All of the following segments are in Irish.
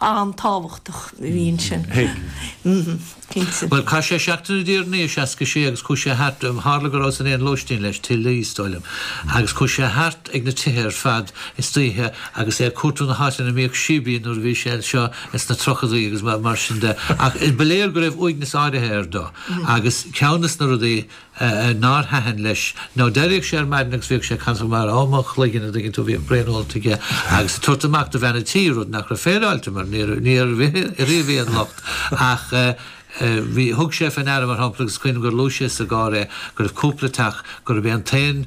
an-tábhachtach a bhí ansin. Thuig. Cinnte. Bhuel, chaith sé seachtain i dTír an Fhia, 66, agus chuaigh sé thart, tharla go rabhas in aon lóistín leis, Tigh Lee, is dóigh liom, agus chuaigh sé thart ag na tithe ar fad istoíche agus é ag cuartú na háiteanna a mbíodh síbín nuair a bhí sé anseo sna tríochadaí agus mar sin de. Ach ba léir go raibh uaigneas áirithe air do agus ceann de na rudaí, nár thaitin leis. Nó d'éireodh sé ar maidin agus bhíodh sé ag ceasacht mar a, mo chloigeann, a' dtuigeann tú, bhíodh braon ólta aige agus ag tabhairt amach do bhean a' tí, rud nach raibh féaráilte mar níor, ní raibh aon locht ach eh bhí, thug sé fé ndeara mar shampla agus cuimhnim gur luaigh sé sa gcarr é go raibh cúpla teach, gurb é an t-aon,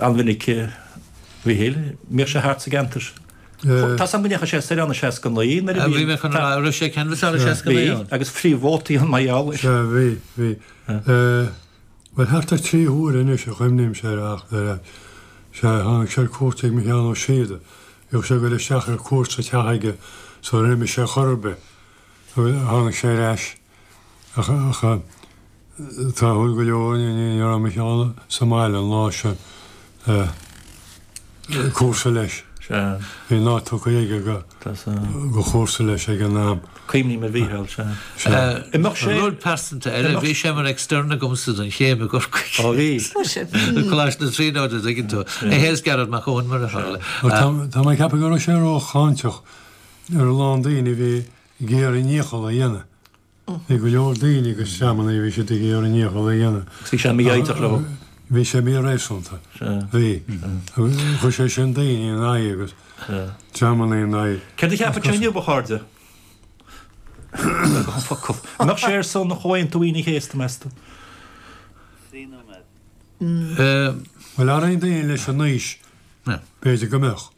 an-mhinic, a Mhichíl. Bhíodh sé thart sa gceantar. Tá 's agam go ndeachaigh sé soir ann i seasca a naoi nuair a bhí an. Bhí mé chun a rá, raibh sé ag canvasáil i seasca a naoi ann? Bhí, agus phríomhvótaí an Maigh Eo. Sea, bhí, bhí. Bhuel, thart ar trí huaire anois a chuimhnímse air ach, dar leat. Sea, tháinig sé ar cuairt ag Micheál Ó Síoda. Bhíodh sé ag goil isteach ar cuairt sa teach aige sula n-imeodh sé chor ar bith. Tháinig sé ar ais. Ach tráthúil go leor ní raibh Micheál sa mbaile an lá sin, cúrsa leis, bhí an áit tugtha aige go chúrsa leis ag an am. Cuimhním ar Mhícheál, sea. Imeoidh sé. Rud pearsanta eile, bhí sé mar extern agamsa don chéim i gCorcaigh. Ó bhí? Tá sé. I gColáiste na Tríonóide, an dtuigeann tú. É féin is Gearóid Mac Eoin, mar a tharla. Tá mé ag ceapadh go raibh sé rócháinteach ar a lán daoine a bhí ag iarraidh a ndícheall a dhéanamh. Bhí go leor daoine agus dreamanna, bhí siad ag iarraidh a ndícheall a dhéanamh. Agus bhí sé mífhoighdeach leo. Bhí sé míréasúnta. Bhí. Agus chuir sé sin daoine ina aghaidh agus dreamanna ina aghaidh. Céard a cheapann tú inniu, a chairde? Gan focal. An mbeadh sé ar son Chomhaontú Aoine an Chéasta, meas tú? Bhuel, ar aon duine leis an aois, b'fhéidir go mbeadh.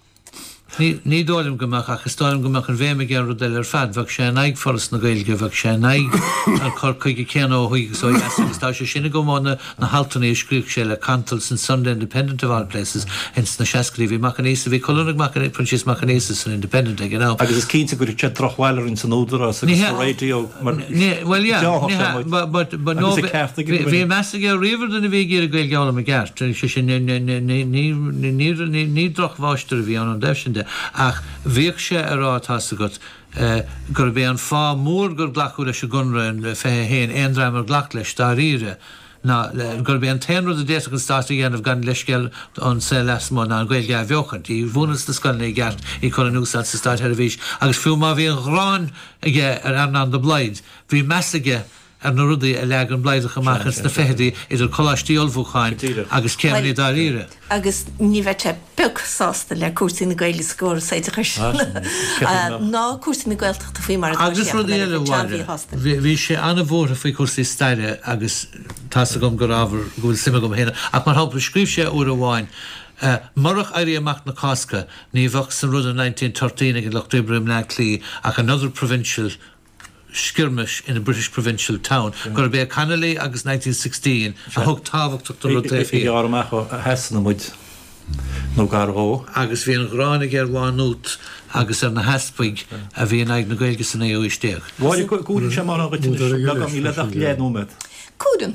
Ní dóigh liom go mbeadh, ach is dóigh liom go mbeadh an bhéim aige ar rud eile ar fad. Bheadh sé in aghaidh Foras na Gaeilge, bheadh sé in aghaidh an chur chuige céanna ó thuaidh agus ó dheas agus tá sé sin i gcuid mhór de na haltanna a scríobh sé le cantal san Sunday Independent of all places in sna seascaidí. Bhí Mac Aonghusa, bhí colún ag Mac Aonghusa, Proinsias Mac Aonghusa san Independent ag an am. Agus is cinnte gur thug sé drochbhail orainn san Údarás agus sa raidió. Mar sin, bhí meas aige riamh ar dhuine a bhí ag iarraidh Gaeilge a fhoghlaim i gceart, is é sin, ní drochmháistir a bhí ann, an taobh sin de, ach bhíodh sé ag rá, tá 's agat, gurb é an fáth mór gur glacadh leis an gConradh, an 21, aon dream ar ghlac leis, dáiríre, ná gurb é an t-aon rud a d'fhéadfadh an Stát a dhéanamh gan leithscéal ón saol lasmuigh ná an Ghaeilge a athbheochaint, í mhúineadh sna scoileanna i gceart, í cur in úsáid sa Státsheirbhís, agus fiú má bhí an ghráin aige ar Earnán de Blaghd, bhí meas aige ar na rudaí a leag an Blaghdach amach ins na fichidí, idir coláistí ullmhúcháin agus céimeannaí dáiríre. agus ní bheadh sé pioc sásta le cúrsaí na Gaeilge sa gcóras oideachais ná cúrsaí na Gaeltachta faoi mar atá siad, an-mhíshásta. Bhí sé an-bhuartha faoi chúrsaí staire agus tá's agam gur ábhar go bhfuil suim agam féin ann, ach mar shampla scríobh sé uair amháin, 'Murach Éirí Amach na Cásca ní bheadh san rud of nineteen thirteen ag an lucht oibre i mBleá Cliath ach another provincial skirmish in a British provincial town, gurb é Connolly agus Nineteen Sixteen a thug tábhacht don rud taobh thiar. Gearr amach ó Shasana muid, nó gar dhó. Agus bhí an ghráin aige ar Mhá Nuat agus ar na heaspaig a bhí in aghaidh na Gaeilge sa naoú haois déag. Mháire, cúireann sé mórán dhuit anois. Beagán, níl ort ach deich nóiméad. Cúireann.